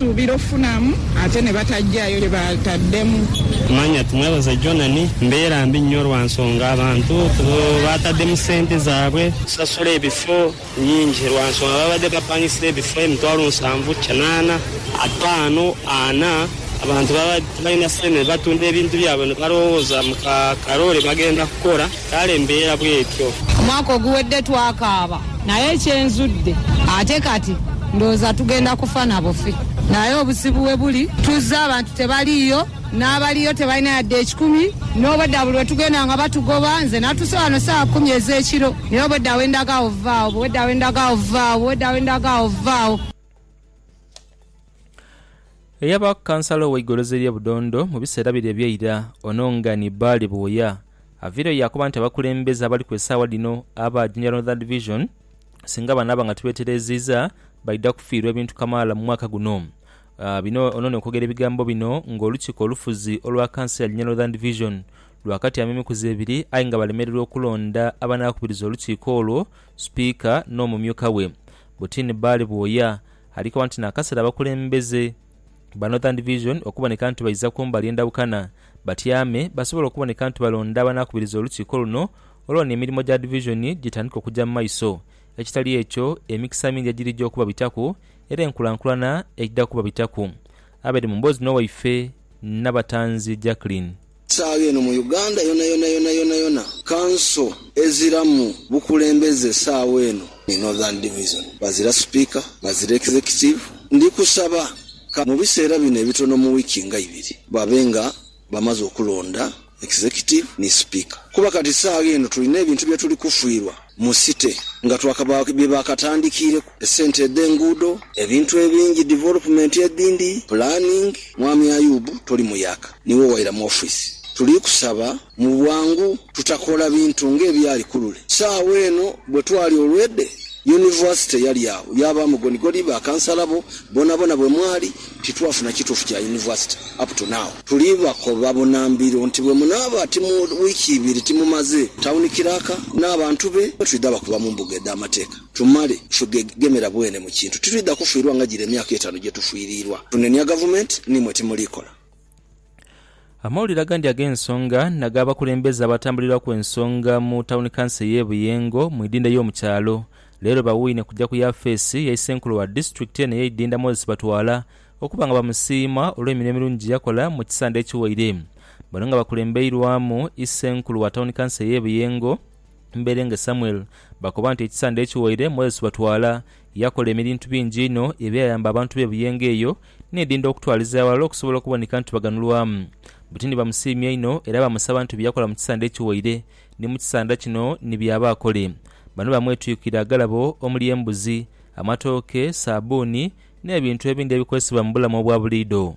Suubira okufunamu ate ne batagyayo kye baataddemu. Manya timwebaza gyona ni mbeera mbi nnyo lwa nsonga abantu baataddemu ssente zaabwe. Kusasula ebifo nnyingi lwa nsonga baabadde bapangisibwa ebifo emitwalo nsanvu, kinaana, ataano, ana. Abantu baabadde tibalina ssente ne batunda ebintu byabwe ne balowooza mu ka kaloole bagenda kukola. Kale mbeera bw'etyo. Omwaka oguwedde twakaaba, naye kye nzudde ate kati ndowooza tugenda kufa na bufi. Naye obuzibu we buli, tuzze abantu tebaliiyo, n'abaliyo tebalina yadde ekikumi. N'obwedda buli lwe tugenda nga batugoba. Nze natuuse wano saawa kumi ez'ekiro, naye obwedda we ndaga awo vva awo, obwedda we ndaga awo vva awo, obwedda we ndaga awo vva awo. Eyaba Kansala ow'eigolozi ery'e Budondo mu biseera bire eby'eira, ono nga ni Bbaale Bwoya, aviireyo yaakoba nti abakulembeze abaliku esaawa dhino aba Jinja Northern Division singa banaaba nga tibeetereeziiza, baidha kufiirwa ebintu kamaala mu mwaka guno. Bino ono n'okwogera ebigambo bino ng'olukiiko olufuzi olwa kanso ya Jinja Northern Division lwakatyama emikuzi ebiri aye nga balemererwa okulonda abanaakubiriza olukiiko olwo, Sipiika n'omumyuka we. Butini Bbaale Bwoya Ali koba nti n'akaseera abakulembeze ba Northern Division okuboneka nti baidha ku mbali endhabukana batyame basobole okuboneka nti balonda abanaakubiriza olukiiko luno olwo n'emirimo gya Divizoni gitandike okugya mu maiso ekitali ekyo emikisa mingi egirija okubabitaku era enkulankulana eidha kubabitaku. Abed mu mboozi n'owaife Nabatanzi Jackline. Saagho eno mu Uganda yonayona yonayonayona kanso eziramu bukulembeze saagho eno ni Northern Division. Bazira sipiika, bazira executive. Ndi kusaba ka mu biseera bino ebitono mu wiiki nga ibiri babe nga bamaze okulonda executive ni sipiika kuba kati saagho eno tulina ebintu bye tuli kufiirwa. Mu City nga twakaba bye baakatandikiireku, esente edh'enguudo, ebintu ebingi, development edhindi, planning, Mwami Ayub toli muyaaka niiwe owaira mu office. Tuli kusaba mu bwangu tutakola bintu ng'ebyali kulule. Saagho eno bwe twali olwedhe, University yali agho, yaabaamu gonigoni, ba kansala bo, bonabona bwe mwali, Titwafuna kituufu kya University up to now. Tuli bakoba bunambiro nti bwe munaaba ti mu wiiki ibiri timumaze Town Clerk n'abantu be mwetwidha bakuba mu mbuga edh'amateeka tumale tufegegemera bwene mu kintu. Titwidha kufiirwa nga gire emyaka etaanu gyetufiiriirwa tunenia Gavumenti, n'imwe timuliikola. Amawulire agandi ag'ensonga n'ag'abakulembeze abatambulirwaku ensonga mu Tawuni Kanso ey'e Buyengo mu idinda y'omu kyalo leero bawuune kugya ku yafeesi ya Isenkulu wa disitulikiti eno ey'eidinda Moses Batwala okuba nga bamusiima olw'emirimo emirungi gyeyakola mu kisande ekiwaire. Bano nga bakulembeirwamu Isenkulu wa Tawuni Kanso ey'e Buyengo, Mberenge Samuel bakoba nti ekisande ekiwaire Moses Batwala Yakola emirintu bingi inho ebyayamba abantu b'e Buyenga eyo n'edinda okutwaliza aghalala okusobola okuboneka nti baganulwamu. Buti ni bamusiimya inho era bamusaba nti bye yakola mu kisande ekiwaire ni mu kisanda kino ni by'aba akole. Bano bamwetwikira agalabo omuli embuzi, amatooke, saabbuuni n'ebintu ebindi ebikozesebwa mu bulamu obwa buliidho.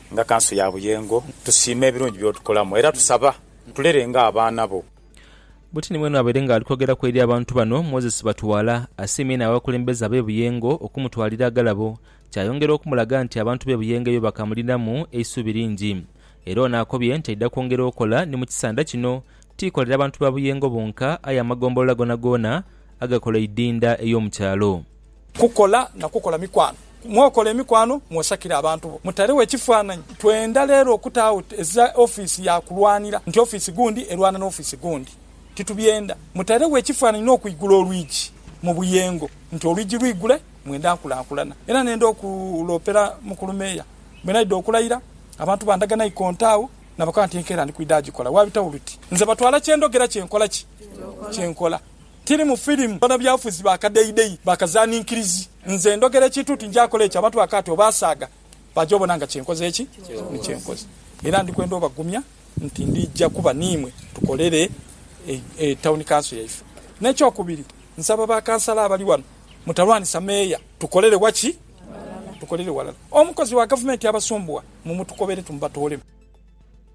Nga Kanso ya Buyengo, tusiima ebirungi by'otukolamu era tusaba otulere ng'abaana bo. Bwetini mwene abaire nga ali kwogeraku eri abantu bano, Moses Batuwala asiimye inho abakulembeze abe Buyengo okumutwalira agalabo kyayongera okumulaga nti abantu be Buyengo eyo bakamulinamu eisuubi lingi era ono akobye nti aidha kwongera okola ni mukisanda kino tikolera bantu ba Buyengo bonka aye amagombolola gonagoona agakola eidinda ey'omukyalo. Kukola na kukola mikwano. Mwokola emikwano, mwosakire abantu bo. Mutaregho ekifaananyi. Twenda leero okutaagho eza ofiisi ya kulwanira, nti ofiisi gundi erwana n'ofiisi gundi. Titubyenda. Mutaregho ekifaananyi n'okwigula olwigi mu buyengo, nti olwigi lwigule, mwenda nkulankulana. Era nenda okuloopera Mukulu Meeya, bwe naidha okulayira, abantu bandaga naikonto agho, nabakoba nti enkeera ndi kwidha gikola. Waabitagho luti, nze batwala kye ndhogera kye nkola ki? Kye nkola. Tiri mu firimu. Banabyafuzi ba kadheidhei, ba kazaninkirizi. Nze ndhogera ekintu nti nja kola ekyo abantu bakaati obaasaaga baaja obona nga kye nkoze ki? Ni kye nkoze. Era ndi kwenda obagumya nti ndija kuba n'imwe tukolere Tawuni Kanso yaife. N'ekyokubiri, nsaba ba kansala abali wano mutalwanisa meeya. Tukolere wa ki? Tukolere walala. Omukozi wa gavumenti abasumbuwa, mumutukobere tumubatoolemu.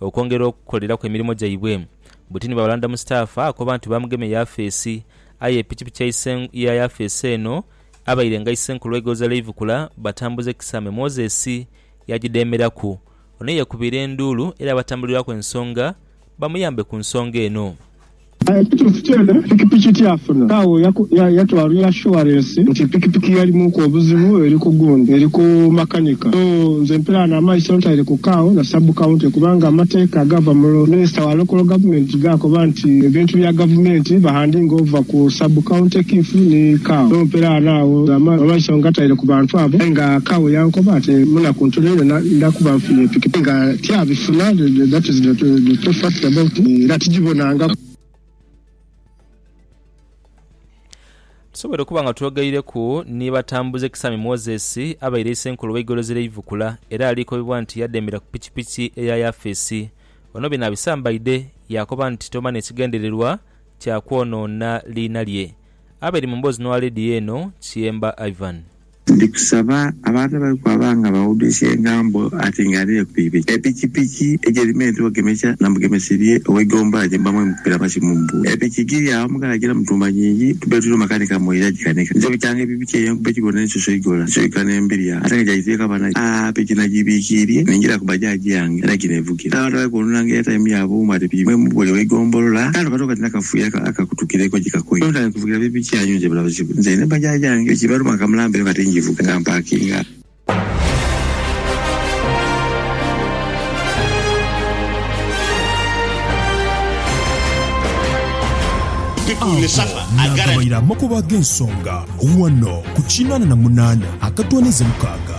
okwongera okukoleraku emirimo gyaibwe. Butini bwa Balanda Mustafa akoba nti baamugema eyafeesi aye epikipiki ya yafeesi eno abaire nga Isenkulu w'Egoza Leivukula Batambuze Kisame Moses yagidheemeraku. Ono ye yekubiira enduulu era abatambulirwaku ensonga bamuyambe ku nsonga eno. Aye ekituufu kyona, pikipiki tiyafuna kaawo yatwala ya shuwarensi nti pikipiki yalimuku obuzibu eri ku gundi eri ku makanika. So nze mpiraano amaiso ntaire ku kaawo na sub county kubanga amateeka agaava mu minisita wa local government gaakoba nti ebintu bya gavumenti bahandinga ova ku sub county kiff ni kaawo. So mpiraano agho amaiso ngataire ku bantu abo aye nga kaawo yankoba nti munaku ntono inho ndakuba nfunye pikipiki nga tiyabifuna that is the true fact about it era tijibona. bw'okuganangaku. Tusobweire okuba nga twogeireku ni Batambuze Kisami Moses abaire Isenkulu w'eigolozi ly'e Ivukula era alikobibwa nti yadembera ku pikipiki eya yafeesi. Ono bino abisambaidhe yaakoba nti toba n'ekigendererwa kya kwonoona liina lye. Abaire mu mboozi n'owa leediyo eno, Kiyemba Ivan. Ndi kusaba abantu abali kwaba nga bawuduisa engambo ati nga adhire ku pikipiki. Epikipiki ejerima entuba gemekya na mugemesi lye owe Gomba gye muba mwemukubira amasimu mbu epiki giri agho mughala gina mutumba nyingi tube tuli makanika mwoyo yagikanika. Nze bukyanga epipiki eyo enkuba egibona ensoso igola nsoika ne mbirya ate nga gyagituyeka banagyo. Aah piki nagibikiirye ne njira ku bajaji yange era gino evugira. Abantu abali kwononanga airtime yabwe mbu ati pikipiki mwe mubulya owe Gombolola kale batoka nti nakafuuya akakutukireku gikakoye. Nvugira piki piki yanyu nje bulabuzi bwe nze ne bajaajange ekibaluma nkamulambayo kati njivuga nga mpakinga. Agho naagabairamu okubaagho ensonga ghano ku kinaana na munaana akatwanize mukaaga.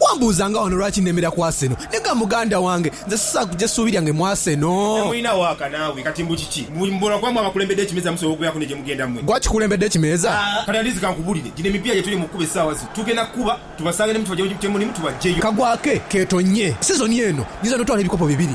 Wambuuza nga wano lwaki nemera ku Arsenal? Nega muganda wange, nze sisaagha kugya suubi lyange mu Arsenal. Temulina waaka naawe. Kati mbu kiki? Mbu mbula kuba mwe abakulembedde ekimeeza musobola okubeeraku ne gye mugenda mwe? Gwe akikulembedde ekimeeza? Kati Andizi kankubuulire, gino emipiira gye tuli mu kukuba essaawa zino, tugenda kukuba tubasange ne mwe tubaggye gye mulimu tubaggyeyo. Kagwake keetonnye sizoni eno, nyinza n'otwala ebikopo bibiri.